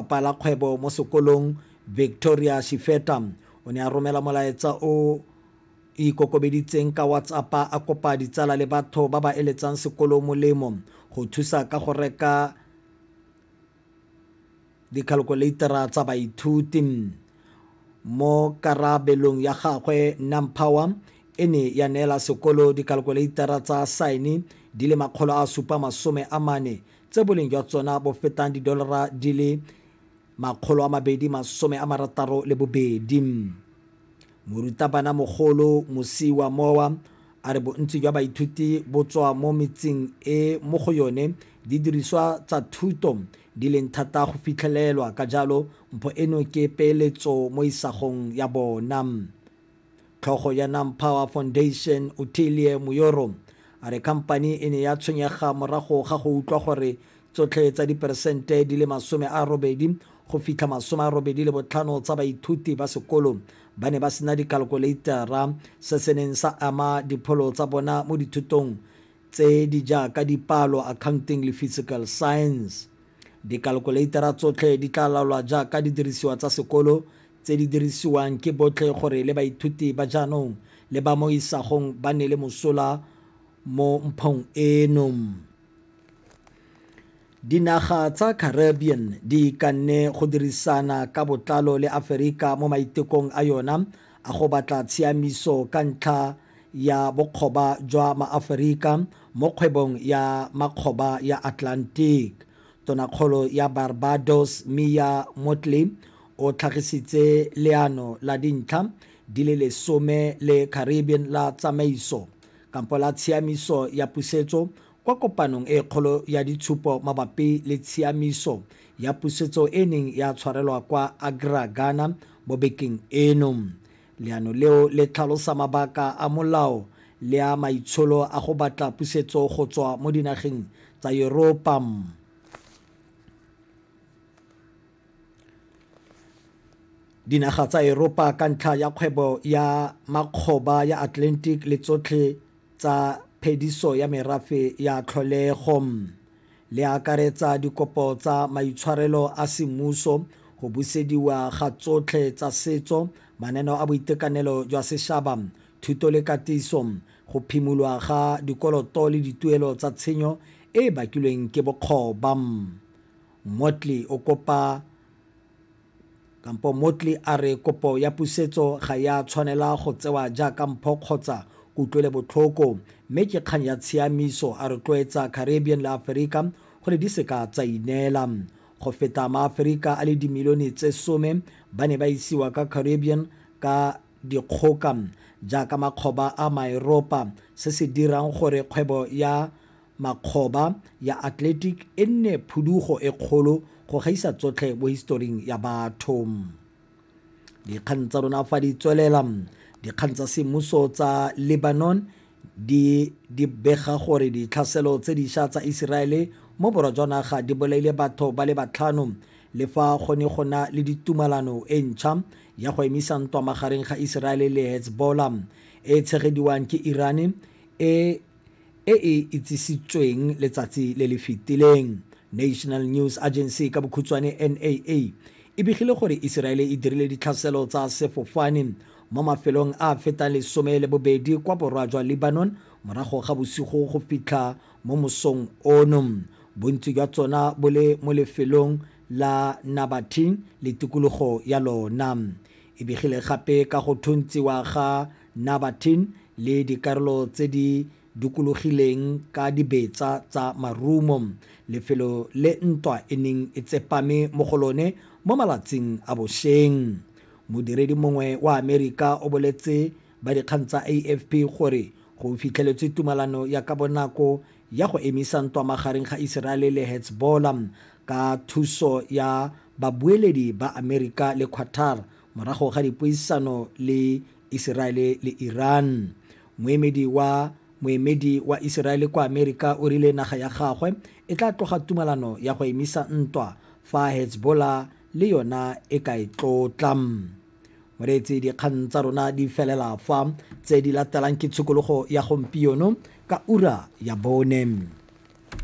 Mopalakgwebo mo sekolong, Victoria Shifeta, o ne a romela molaetsa o ikokobeditseng ka WhatsApp-a a kopa ditsala le batho ba ba eletsang sekolo molemo go thusa ka go reka dikhalkuleitara tsa baithuti. Mo karabelong ya gagwe, Nampower e ne ya neela sekolo dikhalkuleitara tsa saene di le makgolo a supa masome a mane tse boleng jwa tsona bo fetang didolara di le 262. Morutabanamogolo Musii wa Mowa a re bontsi jwa baithuti bo tswa mo metseng e mo go yone didiriswa tsa thuto di leng thata go fitlhelelwa, ka jalo mpho eno ke peeletso mo isagong ya bona. Tlhogo ya Nampower Foundation, Ottilie Muyoro, a re khamphani e ne ya tshwenyega morago ga go utlwa gore tsotlhe tsa diperesente di le masome a robedi go fitlha masome a robedi le botlhano tsa baithuti ba sekolo ba ne ba sena dikalkoleitara se se neng sa ama dipholo tsa bona mo dithutong tse di jaaka dipalo accounting le physical science dikalkoleitara tsotlhe di tla laolwa jaaka didirisiwa tsa sekolo tse di dirisiwang ke botlhe gore le baithuti ba jaanong le ba mo isagong ba nne le mosola mo mphong eno. Dinaga tsa Caribbean di ikanne go dirisana ka botlalo le Aferika mo maitekong a yona a go batla tshiamiso ka ntlha ya bokgoba jwa Maaferika mo kgwebong ya makgoba ya Atlantic. Tonakgolo ya Barbados Mia Mottley O tlhagisitse leano la dintlha di le lesome le Caribbean la tsamaiso kampo la tshiamiso ya pusetso kwa kopanong e kgolo ya ditshupo mabapi le tshiamiso ya pusetso e neng ya tshwarelwa kwa Accra, Ghana mo bekeng eno. Leano leo le tlhalosa mabaka a molao le a maitsholo a go batla pusetso go tswa mo dinageng tsa Yuropa. Dinaga tsa Eropa ka ntlha ya kgwebo ya makgoba ya Atlantic le tsotlhe tsa phediso ya merafe ya tlholego, le akaretsa dikopo tsa maitshwarelo a semmuso, go busediwa ga tsotlhe tsa setso, mananeo a boitekanelo jwa sešaba, thuto le katiso, go phimolwa ga dikoloto le dituelo tsa tshenyo e e bakilweng ke bokgoba. Motley o kopa kampo Motley a re kopo ya pusetso ga ya tshwanela go tsewa jaaka mpho kgotsa kutlwelebotlhoko mme ke kgang ya tshiamiso a rotloetsa Caribbean le Aferika gore di seka tsa ineela. Go feta Maaferika a le dimilione tse some ba ne ba isiwa ka Caribbean ka dikgoka jaaka makgoba a Maeropa se se dirang gore kgwebo ya Makgoba ya Athletic e nne phudugo e kgolo go gaisa tsotlhe mo historing ya batho. Dikgang tsa rona fa di tswelela, dikgang tsa semmuso tsa Lebanon di di bega gore ditlhaselo tse diša tsa Iseraele mo borwa jwa naga di bolaile batho ba le batlhano le fa go ne go na le ditumalano e ntšha ya go emisa ntwa magareng ga Iseraele le Hezbollah e tshegediwang ke Irane e e e itsisitsweng letsatsi le le fetileng. National News Agency, ka bokhutshwane NAA, e begile gore Iseraele e dirile ditlhaselo tsa sefofane mo mafelong a a fetang lesome le bobedi kwa borwa jwa Lebanon morago ga bosigo go fitlha mo mosong ono, bontsi jwa tsona bo le mo lefelong la Nabateen le tikologo ya lona. E begile gape ka go thuntsiwa ga Nabatean le dikarolo tse di dukulogileng ka dibetsa tsa marumo, lefelo le ntwa e neng e tsepame mo go lone mo malatsing a bosheng. Modiredi mongwe wa Amerika o boletse ba dikgang tsa AFP gore go fitlheletswe tumalano ya ka bonako ya go emisa ntwa magareng ga Iseraele le Hezbollah ka thuso ya babueledi ba Amerika le Qatar Morago ga dipuisano le Iseraele le Iran, moemedi wa moemedi wa Iseraele kwa Amerika o rile naga ya gagwe e tla tloga tumalano ya go emisa ntwa fa Hezbollah le yona e ka e tlotla. Moreetsi dikgang tsa rona di felela fa tse di latelang ke tshikologo ya gompieno ka ura ya bone.